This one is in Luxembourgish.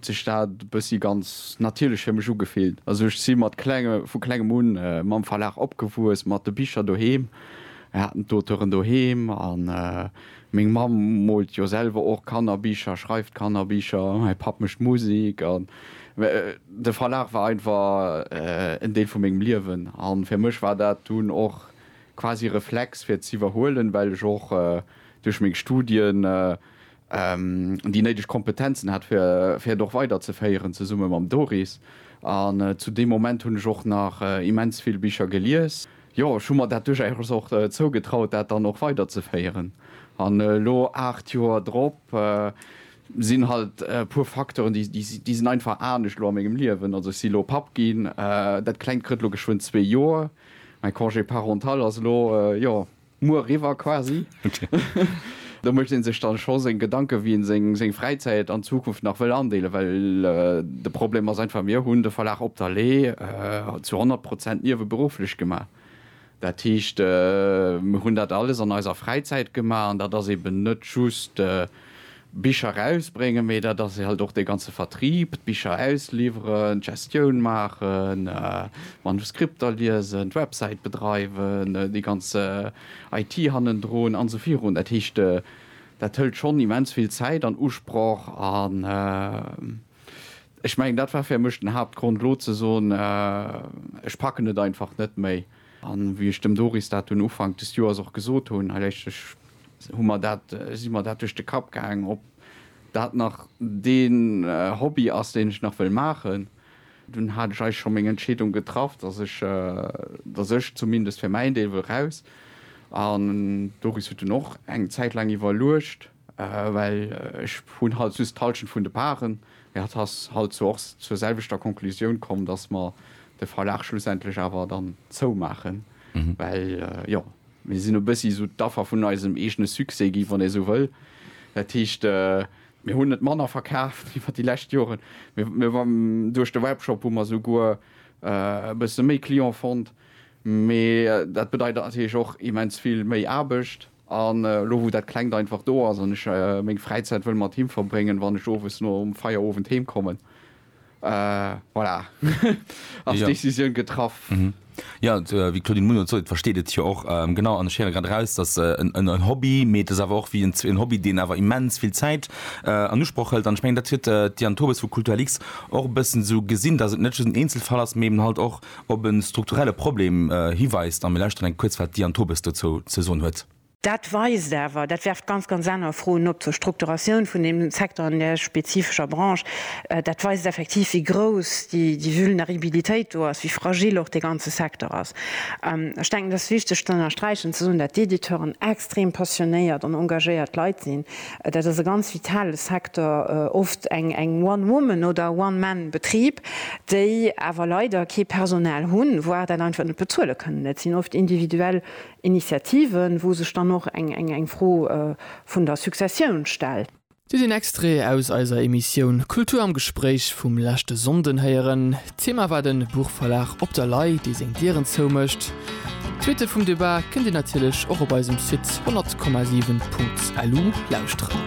sech dat e bëssi ganz natierlech fir mech ugefillt. Also ech si mat klenge vu klengem un mam Verlag opgewuess, mat de Bicher doheem. Mir haten d'Auteuren doheem a meng Mamm moolt jo selwer och Kannerbicher, schreift Kannerbicher, mäi Papp mécht Musek an de Verlag war einfach en Deel vu mengem Liewen. A fir mech war dat dunn och quasi Reflex fir z'iwwerhuelen, well ech och duerch meng Studien déi néideg Kompetenzen hat fir fir et och weider ze féieren zesumme mam Doris an zu deem Moment hunn ech och nach immens vill Bicher gelies. Jo ech hu mer dat duerchaus och zougetraut dat dann och weider ze féieren an elo 8 Joer drop sinn halt e puer Facteuren déi déi sinn einfach anescht elo a mengem Liewen. Also ech si elo Papp ginn, dat klengt krëtt elo geschwënn zwee Joer, mäi Congé parental ass elo jo. Muer riwwer quasi. Do mécht ee sech dann scho seng Gedanken, wéi een seng Fräizäit an Zukunft nach wëll andeelen, well de Problem ass einfach, mir hunn de Verlag Op der Lee zu 100 Prozent nieweberufflech gemaach. Dat heescht, mir hunn dat alles an eiser Fräizäit gemaach an dat ass eeben net just Bicher erausbréngen, mee dat ass halt och dee ganze Vertrieb, d'Bicher ausliwweren, d'Gestioun maachen, d'Manuskripter liesen, d'Websäit bedreiwen, déi ganz IT hannendrun an esou virun. Dat heescht, dat hëlt schonn immens vill Zäit an Usproch an ech mengen, dat war fir mech den Haaptgrond, elo ze soen, ech packen et einfach net méi. A wéi ech dem Doris dat dunn Ufank des Joers och gesot hunn, hei léischtlech, hu mer dat, si mer dat duerch de Kapp gaang, ob dat nach dee Hobby ass, deen ech nach wëll maachen. Dunn hat ech eis scho meng Entscheedung getraff, dass ech, dass ech zumindest fir mäin Deel wëll raus. An d'Doris huet dunn och eng Zäit laang iwwerluecht. Well ech hunn halt just d'Halschent vun de Paren. Mir hat has halt zwar och zur selwechter Konklusioun komm, dass mer de Verlag schlussendlech awer dann zoumaachen. Well, jo, mir sinn e bëssi esou d'Affer vun eisem eegene Succès gi, wann ee esou wëll. Dat heescht, mir hunn net manner verkaaft iwwer déi lescht Joren. Duerch de Webshop hu mer souguer e bësse méi Client fonnt. Mee dat bedeit natierlech och immens vill méi Aarbecht. An elo wou dat klengt einfach do ass an ech meng Fräizäit wëll mat him verbréngen, wann ech owes nom Feierowend heem kommen, voilà, ass d'Decisioun getraff. Jo, wéi d'Claudine Muno et sot, versteet et jo och, genau. An ech héiere grad eraus, dass en Hobby, mee et ass awer och wéi en Hobby, deen awer immens vill Zäit an Usproch hëlt. An ech mengen, dat huet d'Diane Tobes vu Kulturlix och e bëssen esou gesinn, dass et net just en Eenzelfall ass, mee eben halt och op e strukturelle Problem hiweist a mir lauschteren enk kuerz, wat d'Diane Tobes dozou ze soen huet. Dat weist awer, dat werft ganz, ganz aner Froen op zur Strukturatioun vun deem Secteur an där spezifescher Branche, dat weist effektiv, wéi grouss déi Vulneribilitéit do ass, wéi fragil och dee ganze Secteur ass. Ech denken, et ass wichteg ze ënnersträichen, ze soen, dat d'Editeuren extrem passionéiert an engagéiert Leit sinn. Dat ass e ganz vitale Secteur, oft eng One Woman oder One Man Betrib, déi awer leider kee Personal hunn, voire dat einfach net bezuele kënnen. Et sinn oft individuell Initiativen, wou sech dann och eng Fro vun der Successioun stellt. Dir den Extrait aus eiser Emissioun Kultur am Gespréich vum leschte Sonnden héieren. Thema war den Buchverlag Op der Lay, dee seng Dieren zou mécht. D'Suite vum Debat kënnt Dir natierlech och op eisem Site 100,7.lu lauschteren.